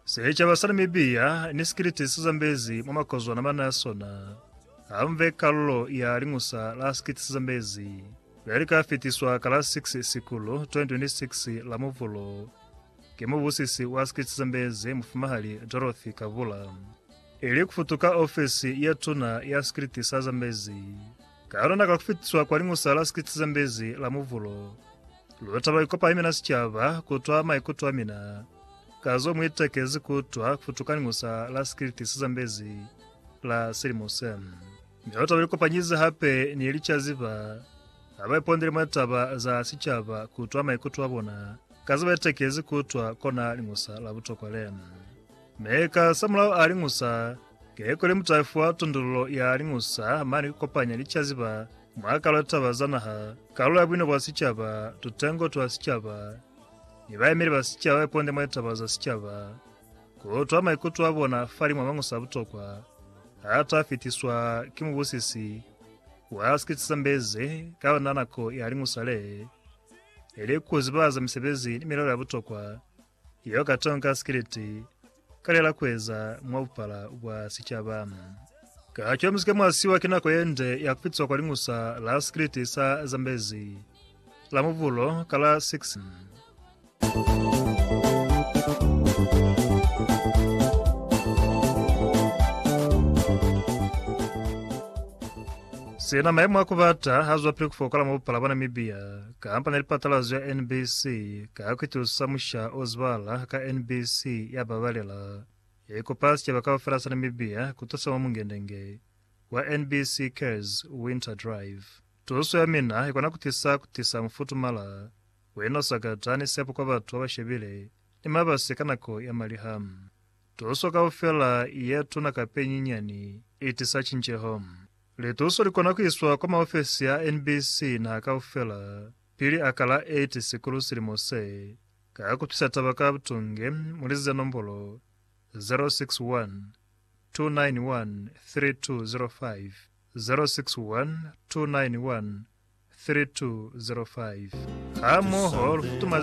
Sicaba sa Namibia ni sikiliti si zambezi mwa makozwana mana a sona hambe kalulo ya liñusa la sikiliti si zambezi le li ka fitiswa ka la 6 Sikulu 2026 la Muvulo ki mubusisi wa sikiliti si zambezi Mufumahali Dorothy Kabula ili ku futuka ofisi ya tuna ya sikiliti sa zambezi. Ka yona ka ku fitiswa kwa Liñusa la Sikisi ze Mbezi la Muvulo, lu taba ikopa ni mina sicaba ku twa maikuto a mina ka zo mu itekezi ku utwa kufutu ka Liñusa la Sikisi ze Mbezi la silimo se. Mi lu taba ikopanyize hape ni licaziba ha ba ipondele mwa litaba za sicaba ku twa maikuto a bona ka ze ba itekezi ku utwa kona Liñusa la butokwa le. Mi ka samulaho a Liñusa Ke kuli mutayifu wa tondolulo ya Liñusa mane ku kopanya licaziba mwa Kalu ya Taba za Naha, Kalu ya Buino bwa Sicaba, Tutengo twa Sicaba, ni bayemeli ba sicaba ba iponde mwa litaba za sicaba, ku utwa maikuto a bona fali mwa mañusa a butokwa a ta fitiswa ki mubusisi wa Sikisesambezi ka ona nako ya Liñusa le, ili ku zibahaza misebezi ni milao ya butokwa Yo ka tonka sikiliti ka lela kueza mwa bupala bwa sicaba. Ka co musike mwa siwa ki nako yende ya kupitswa kwa liñusa la sikiliti sa Zambezi la mubulo ka la 6. Sina maimo a kubata hazwapili kufokola mwa bupala bwa Namibia. Kampani ya lipatalazo ya NBC ka kuitusa musha o zibala ka NBC ya babalela, ya ikupa sicaba kaufela sa Namibia kutusa mwa mungendenge wa NBC Cares Winter Drive. Tuso ya mina ikona kutisa kutisa mufutumala we no sakata ni sepo kwa batu babashebile ni mabasi ka nako ya maliha. Tuso kaufela ye tuna kapa ye nyinyani i tisa cinceho. Lituso li kona ku iswa kwa maofesi a NBC naha kaufela pili a ka la 8 Sikulu silimo se, ka ku psisa taba ka butunge mu lizize nombolo 0612913205, 0612913205. Hamoho lu futumaze